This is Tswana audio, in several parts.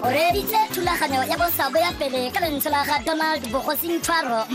o reeditse thulaganyo ya bosabo ya pele ka lentswe la ga donald bogosing tshwaro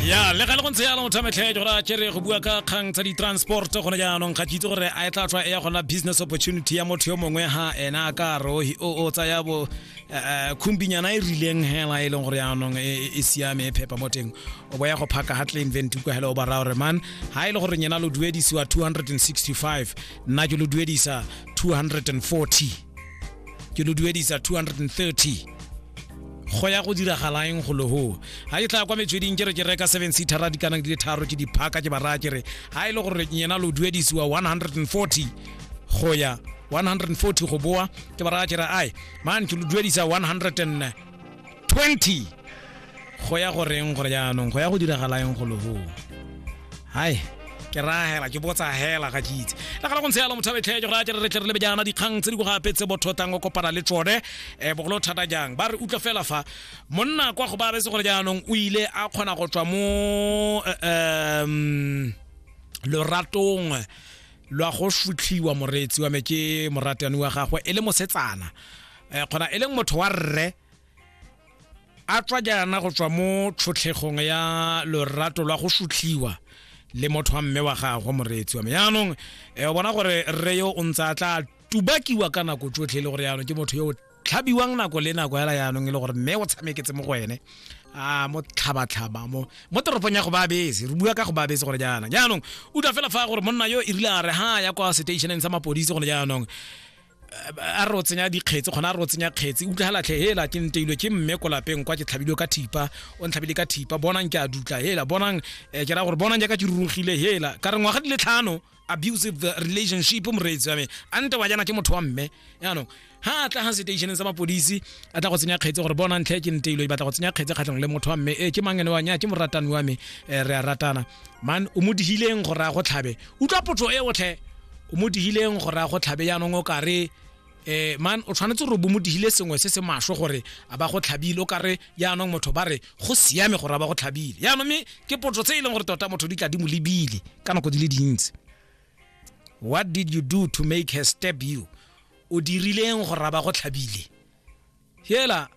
ya le ga le go ntse yalo motho metlhe ke gore a kere go bua ka kgang tsa di-transport gone jaanong ga ke itse gore a e tla tswa e ya gona business opportunity ya motho yo mongwe ha ena a ka re o tsaya bo eh, eh, khumbinyana e rileng hela e leng gore jaanong e, e, e siame e phepa mo teng o boya go phaka ga claim vent kwa hello ba rao re man ha ile e gore nyena lo duedisiwa 265 nna ke lo duedisa 240 ke lo duedisa 230 go ya go diragalaeng go logo ga ke tla kwa metsweding ke re ke reka seven seatera di kanang di le tharo ke diphaka ke baraya ke re ga e le gore nyena lo duedisiwa 140 go ya 140 go boa ke baraya ke re ai man ke lo duedisa 100 20 go ya go reng gore jaanong go ya go diragalaeng go loho hai ke rahela ke botsa hela ga ke itse le gala go ntshe yalo motho betlhe go ra tle re tle re lebe jaana dikgang tse di go gape tse botho tang o kopana le tsone um bogolo thata jang ba re utlwa fela fa monna kwa go ba retse gore jaanong o ile a kgona go tswa mo um loratong lwa go sutlhiwa moreetsi wa me ke moratani wa gagwe e le mosetsana um kgona e leng motho wa rre a tswa jaana go tswa mo tlhotlhegong ya lorato lwa go sutlhiwa le motho wa mme wa gagwe moreetsi wa me jaanong eh, o bona gore rre yo o ntse a tla tubakiwa ka nako tsotlhe e le gore jaanong ke motho yo o tlhabiwang nako le nako hela jaanong e le gore mme o tshameketse mo go ene a mo tlhabatlhaba mo mo toropong ya go ba bese re bua ka go ba bese gore jaana jaanong utlwa fela fa gore monna yo e rile a re ha ya kwa seteisheneng sa mapodisi gone jaanong a re o tsenya dikgetsi kgona a re o tsenya kgetsi utlwa ga latlhe hela ke nteilwe ke mme ko lapeng kwa ke tlhabilwe ka thipa o ntlhabile ka thipa bonang ke a dutla hela bonang eh, ke ra gore bonang jaaka ke rurugile hela ka re ngwaga di le tlhano abusive relationship moreetsi wa me a nte wa jana ke motho wa mme yaanong ha a tla ga stationeng sa mapodisi a tla go tsenya kgetse gore bona ntlhe ke nteilwe e batla go tsenya kgetse kgatlhong le motho wa mme e ke mangene wa nya ke moratani wa me eh, re a ratana man o mo digileng go raya go tlhabe utlwa potso e otlhe o mo digileng go raya go tlhabe yaanong o kare eh man o tshwanetse gore bo mo digile sengwe se se masho gore a ba go tlhabile o kare yaanong motho ba re go siame gore a ba go tlhabile yaanong mme ke potso tse e leng gore tota motho di tla di mo lebile ka nako di le dintsi what did you do to make her step you o dirileng gore a ba go tlhabile hela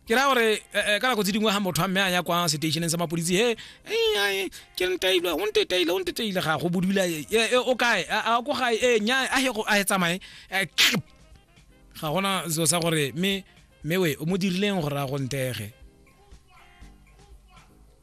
ke ra gore eh, eh, ka nako tse dingwe ga motho a mme a ya kwa seteisheneng sa mapodisi he eh, ai, ke ntaile o nteteile o nteteile ga go bodula eh, eh, o kae a a ko gae e nya a he go a he tsamaye Eh, kip. ga gona selo sa gore mme mme we o mo dirileng gore a go ntege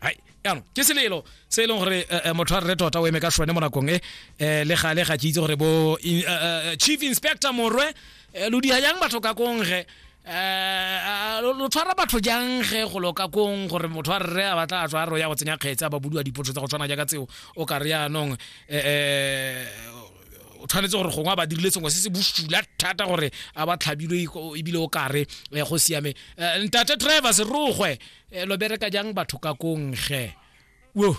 hai yaanong ke selelo se e leng gore eh, eh, motho a rre tota o eme ka sone mo nakong e eh, le gale ga ke itse gore bo in- eh, eh, chief inspector morwe eh, lo diha jang batho ka kongge eh, lo lo tshwara batho jang ge go loka kong gore motho a rre a batla a tswa a re o ya go tsenya kgetse a ba budiwa dipotso tsa go tshwana jaaka tseo o ka re yaanong eh, eh, o tshwanetse gore gongwe a ba dirile sengwe se se bosula thata gore a ba tlhabilwe iko- ebile o kare eh, go siame Eh, ntate travis rogwe e lo bereka jang batho ka kongge wo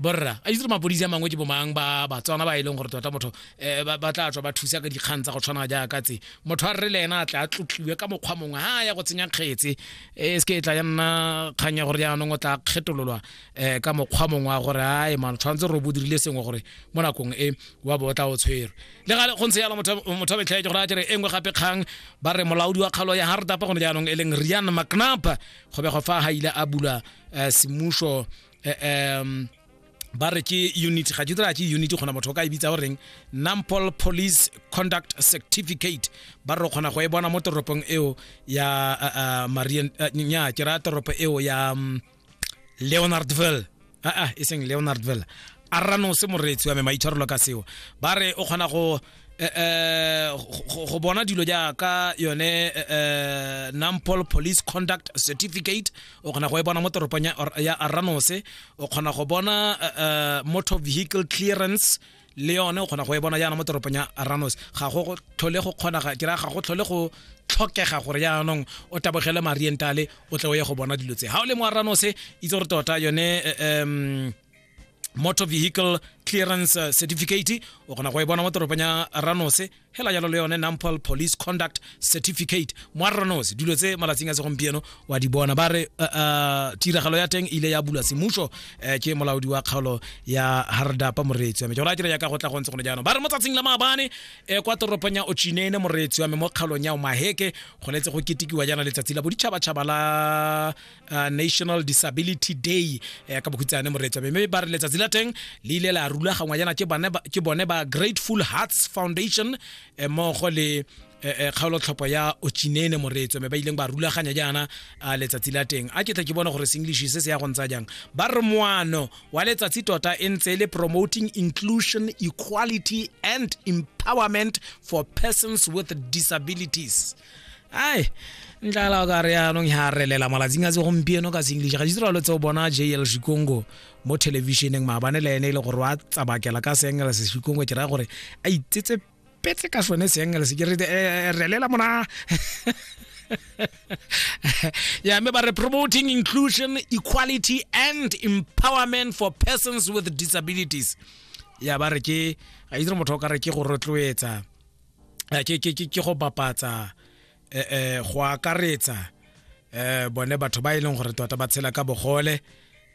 borra a itse mapodisi a mangwe ke bomang ba batswana ba e leng gore tota motho um ba tla tswa ba thusa ka dikgang tsa go tshwana jaaka tse motho a re le ena a tla a tlotliwe ka mokgwa mongwe ha ya go tsenya kgetse e se ke e tla ya nna kgang ya gore jaanong o tla kgetololwa um ka mokgwa mongwe wa gore a e mano tshwanetse gore o bodirile sengwe gore mo nakong e wa bo o tla o tshwerwe le gale go ntse yalo motho a betlhaetse gore a tere e nngwe gape kgang ba re molaodi wa kgalo ya hardapa gone jaanong e leng rian mcnap go bego fa ga ile a bula eh, semuso eh, em, ba re ke unit ga ke tsela ke unit gona motho o ka e bitsa goreng nampol police conduct certificate ba re o kgona go e bona mo toropong eo ya uh, uh, marian uh, nya ke raya toropo eo ya um, leonardville aa ah, ah, e seng leonardville a ranose moreetsi wa me maitshwarelo ka seo ba re o kgona go eh, eh, go bona dilo jaaka yone eh, nampol police conduct certificate o kgona go e bona mo toropong ya aranose o kgona go bona motor vehicle clearance le yone o kgona go e bona jaana mo toropong ya aranos ga go tlhole go kgonaga ke raya ga go tlhole go tlhokega gore jaanong o tabogele marientale o tle o ye go bona dilo tse ga o le mo aranos itse gore tota yone um motor vehicle clearance eh, certificate o kgona go e bona mo toropong ya aranos hela jalo le yone nampol police conduct certificate moarranosi dilo tse malatsing a segompieno wa di bona ba re uh, uh, tiragalo ya teng ile ya bula semuso eh, ke molaodi wa kgaolo ya hardapa moreetsi wa me jora a dira yaka go tla go ntse gone jaanong ba re mo tsatsing la maabane eh, kwa toropong ya ochinene moreetsi wa me mo kgaolong ya omaheke go letse go ketekiwa jaana letsatsi la boditšhabatšhaba la uh, national disability day eh, ka bokhutshane moreetsa mme ba re letsatsi la teng le ile la rulagangwa jaana ke bone ba grateful hearts foundation eh, mmogo le eh, eh, kgaolotlhopho ya ochinene moreetso mme ba ileng ba rulaganya jaana uh, letsatsi la teng a ke tle ke bone gore senglish se se ya go ntsa jang ba re moano wa letsatsi tota e ntse le promoting inclusion equality and empowerment for persons with disabilities ai ntlala o ka re yanong ya relela malatsing a tse gompieno ka seenglish ga ditiralo tse o bona jl shikongo mo thelebišeneng maabane le ene e le gore wa tsabakela ka seengelese shikongo ke raya gore a itsetse petse ka sone seengelese ke re eh, eh, relela mona yeah, mme ba re promoting inclusion equality and empowerment for persons with disabilities ya ba re ke ga itse motho o ka re ke go rotloetsa eh, ke ke ke go bapatsa eh, eh go akaretsa eh bone batho ba e leng gore tota ba tshela ka bogole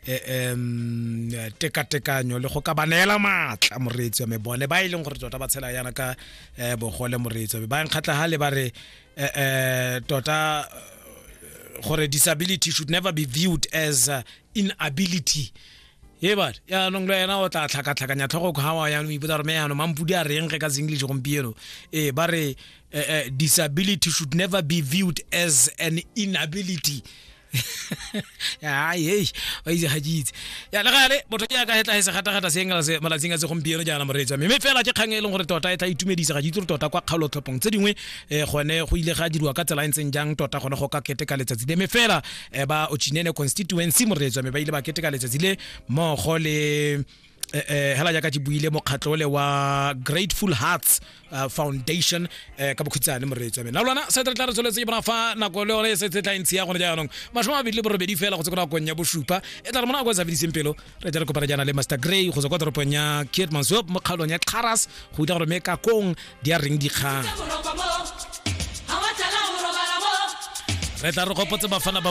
eh, em tekatekanyo le go ka ba neela maatla moreetsi wa me bone ba e leng gore tota ba tshela yana ka eh, bogole moreetsi wa me ba nkgatla ha le ba re eh, eh, tota gore disability should never be viewed as uh, inability e bale yaanong le wena o tla tlhakatlhakanya tlhogo kgawa yaanong ipotsa gore me yaanong mampudi a reng ge ka seenglish gompieno ee ba re eh, eh, disability should never be viewed as an inability ai hei wa itse ga ke itse ya le gale motho ke yaka hetla e segatagata se engela se malatsing a se gompieno jaana moreetsa mme fela ke kgang e leng gore tota e tla itumedisa ga ke itse gore tota kwa kgaolotlhophong tse dingwe um gone go ile ga diriwa ka tsela e ntseng jang tota gone go ka keteka letsatsi le mme fela eh, ba ochinene constituency moretswa me ba ile ba keteka letsatsi le mmogo le eh, eh, hela jaaka ke buile mokgatlho le wa grateful hearts uh, foundation eh, ka bokhutsane moretswa me na lwana se re tla re tsholetse ke bona fa nako le yone e setse tla ntsi ya gone jaanong mashome a mabedi le borobedi fela go tse ko nakong ya bosupa e tla re mona go e sa fediseng pelo re tla re kopana jaana le master gray go tswa kwa toropong ya kietmansop mo kgaolong ya xaras go itla gore me ka kong di a reng dikgang re tla re gopotse bafana ba